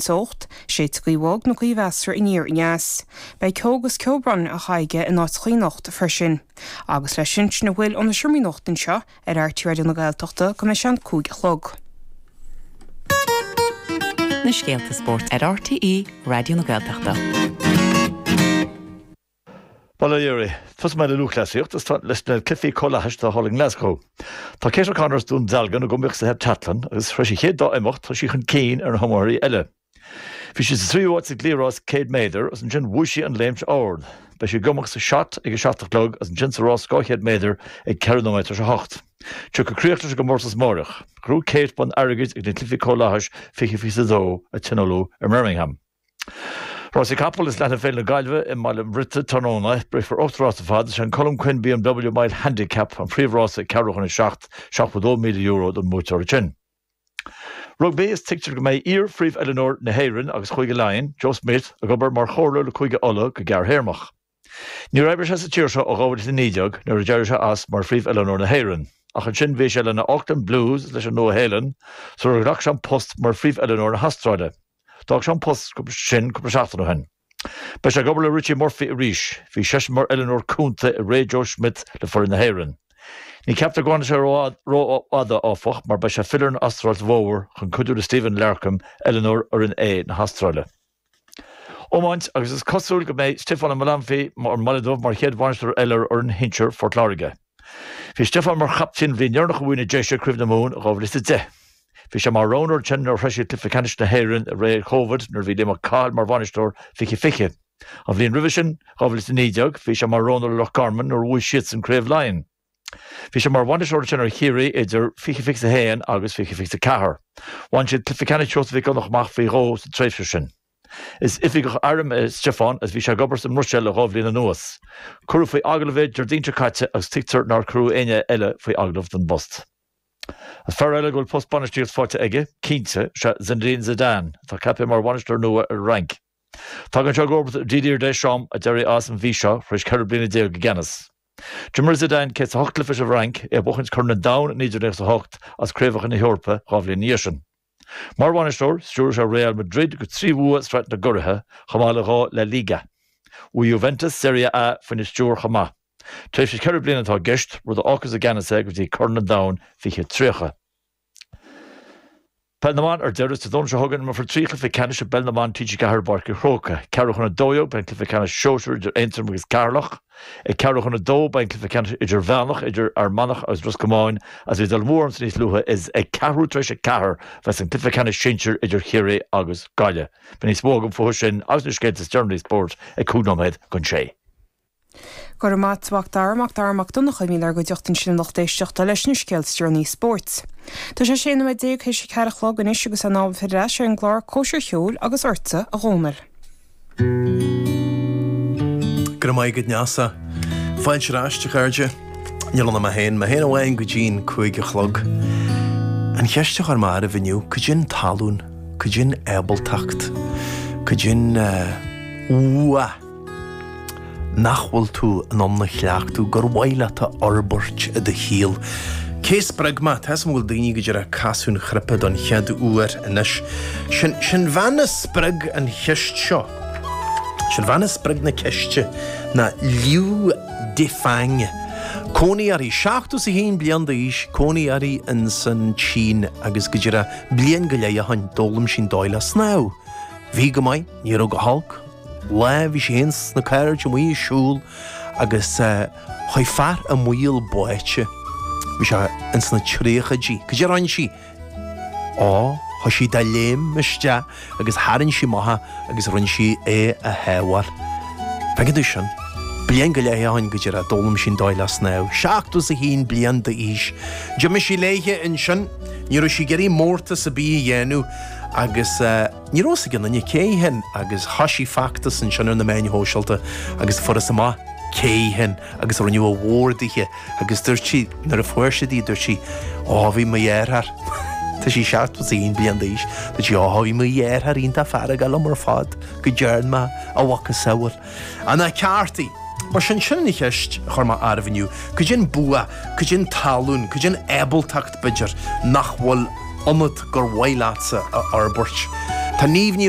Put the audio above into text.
teocht, séidfidh gaoth bhog nó gaoth mheasartha aniar aneas. Beidh ceo 'gus ceobhrán a haghaidh aige in áiteachaí anocht freisin. Agus leis sin sin a bhfuil ó na seomraí nuachta anseo ar RTÉ Raidió na Gaeltachta go dtí an cúig a chlog. Na scéalta spóirt ar RTÉ Raidió na Gaeltachta. Bail ó Dhia oraibh. Tosóidh mé le lúthchleasaíocht, is leis na cluichí comhlathais atá thall i nGlaschú. Tá Kate O'Connor as Dún Dealgan ag iomaíocht sa heipteatlan, agus tar éis an chéad dá imeacht, tá sí chun cinn ar na hiomaitheoirí eile. Bhí sí sa tríú háit sa gcliathrás 100 méadar, agus ansin bhuaigh sí an léimt ard. Beidh sí ag iomaíocht sa shot ag a seacht a chlog, agus ansin sa rás 200 méadar ag ceithre nóiméad tar éis a hocht. Tiocfaidh críoch leis an gcomórtas amáireach. Ghnóthaigh Kate bonn airgid ag na cluichí comhlathais 2022, a tionóladh i mBirmingham. Rásaí capall is leanfaidh Féile na Gaillimhe i mBaile an Bhriotaigh tráthnóna. Rithfear ocht rás ar fad. Is é an Colm Quinn BMW Mile Handicap an príomh-rás ag ceathrú chun a seacht, €72,000 don mbuaiteoir ansin. Rugbaí is tuigtear go mbeidh iar-phríomhoiliúnóir na hÉireann agus Chúige Laighean, Joe Schmidt, ag obair mar chomhairleoir le Cúige Uladh go gearrthéarmach. Níor oibrigh sé sa tír seo ó 2019 nuair a d'éirigh sé as mar Phríomh-Oiliúnóir na hÉireann, ach ansin bhí sé leis na Auckland Blues is leis an Nua-Shéalainn sular ghlac sé an post mar Phríomh-Oiliúnóir na hAstráile. D'fhág sé an post sin cúpla seachtain ó shin. Beidh sé ag obair le Richie Murphy arís. Bhí seisean mar oiliúnóir cúnta i ré Joe Schmidt le foireann na hÉireann. Ní ceaptar go bhfanfaidh sé rófhada, áfach, mar beidh sé ag filleadh ar an Astráil sa bhfómhar chun cuidiú le Stephen Larkham, oiliúnóir fhoireann A na hAstráile. iomáint agus is cosúil go mbeidh Stiofán Ó Maolanfaidh ón mBaile Dubh mar chéad bhainisteoir eile ar fhoireann shinsir Phort Láirge. Bhí Stiofán mar chaptaen an bhliain dheireanach a bhuaigh na Déise Craobh na Mumhan in 2010. Bhí sé mar roghnóir ansin nuair a shroich siad cluiche ceannais na hÉireann i ré Covid nuair a bhí Liam Ó Cathail mar bhainisteoir 2020. An bhliain roimhe sin, 2019, bhí sé mar roghnóir le Loch Garman nuair a bhuaigh siadsan Craobh Laighean. Bhí sé mar bhainisteoir ansin ar Chiarraí idir 2021 agus 2024. Bhain siad cluiche ceannais Sheosaimh Mhic Dhonnacha amach faoi dhó sa tréimhse sin. Is oifigeach airm é Stiofán agus bhí sé ag obair sa mBruiséil le dhá bhliain anuas. Cuireadh faoi agallamh é Déardaoin seo caite agus tuigtear nár cuireadh éinne eile faoi agallamh don bpost. Is fear eile a bhfuil post bainistíochta faighte aige, cinnte, is ea Zinedine Zidane, atá ceaptha mar bhainisteoir nua ar an Fhrainc. Tagann sé i gcomharbacht ar Didier Deschamps, a d'éirigh as an mhí seo, tar éis 14 bliana i gceannas. D'imir Zidane 108 cluiche leis an bhFrainc, é ag buachaint Corn an Domhain i 1998 agus Craobhacha na hEorpa dhá bhliain ina dhiaidh sin. Mar bhainisteoir, stiúraigh sé Real Madrid go trí bhua i sraith na gcuraithe, chomh maith le dhá La Liga. Bhuaigh Juventus Serie A faoina stiúir chomh maith. Tréimhse ceithre bliana atá i gceist, rud a fhágfas i gceannas é go dtí Corn an Domhain 2030. Peil na mBan Ar deireadh, Dé Domhnaigh seo chugainn, imreofar trí chluiche ceannais i bpeil na mban TG4 i bPáirc an Chrócaigh. Ceathrú chun a dó dhéag, beidh an cluiche ceannais Sóisear idir Aontroim agus Ceatharlach. Ag ceathrú chun a dó, beidh an cluiche ceannais Idirmheánach idir Fhear Manach agus Ros Comáin agus bhí Dún Mór ionsa níos luaithe. Is ag ceathrú tar éis a ceathair a bheas an cluiche ceannais Sinsir idir Chiarraí agus Gaillimh. Beidh níos mó agam fúthu sin agus na scéalta is deireanaí spóirt ag cúig nóiméad chun sé. Go raibh maith agat a Mhac Dara Mac Dara Mac Donncha a bhí inár gcuideachta ansin a lucht éisteachta leis na scéalta is deireanaí spóirt. Tá sé a sé nóiméad déag th'éis a ceathair a chlog anois agus in am filleadh ar ais ar an gclár Cormac ag a Cúig agus ortsa a Dhomhnaill. Go raibh maith agat Neasa. Fáilte ar ais, a chairde. Níl ann ach mé féin, mé féin amháin go dtí an cúig a chlog. An cheist a chuir mé oraibh inniu, cad é an tallann? Cad é an ábaltacht? Cad é an, bua? nach bhfuil tú in ann a chleachtadh gur mhaith leat a fhorbairt i do shaol? Cé a spreag mé? Tá 's agam go bhfuil daoine go díreach ag casadh an chnaipe don chead uair anois. Sin an bhean a spreag an cheist seo. Sin an bhean a spreag an cheist ná Liu Defang. Cónaí uirthi, 71 bliain d'aois, cónaí uirthi in san tSín agus go díreach bliain go leith ó shin d'fhoghlaim sí an dóigh le snámh. Bhí go maith, ní raibh go holc, lá bhí sé fhéin 's a cairde amuigh ag siúl agus chuaidh fear i mbaol báite. Bhí sé ins na tríochaidí. Cad é a rinn sí? Ó, chuaigh sí de léim isteach agus tharraing sí amach é agus rinne sí é a shábháil. Feiceann tú sin. Bliain go leith ó shin go díreach, d'fhoghlaim sí an dóigh le snámh. Seachtó 's a haon bliain d'aois. D'imigh sí léithe ansin. Ní raibh sí ag iarraidh mórtas a' bith a dhéanamh agus. Ní raibh fhios ag aon duine cé hí féin agus thoisigh feachtas ansin ar na meáin shóisialta agus fuarthas amach cé hí féin agus rinneadh a mhór dithe agus dúirt sí, nuair a fuair siad í, dúirt sí Á, bhí mo dheartháir, tá sí seachtó 's a haon bliain d'aois, dúirt sí Á, bhí mo dheartháir iontach feargach liom ar fad go dtearn mé a mhacasamhail. An ceart aige? Mar sin, sin an cheist a chuir mé oraibh inniu, cad é an bua, cad é an tallann, cad é an ábaltacht, b'fhéidir, nach bhfuil ionat gur mhaith leatsa a fhorbairt? Tá Niamh Ní.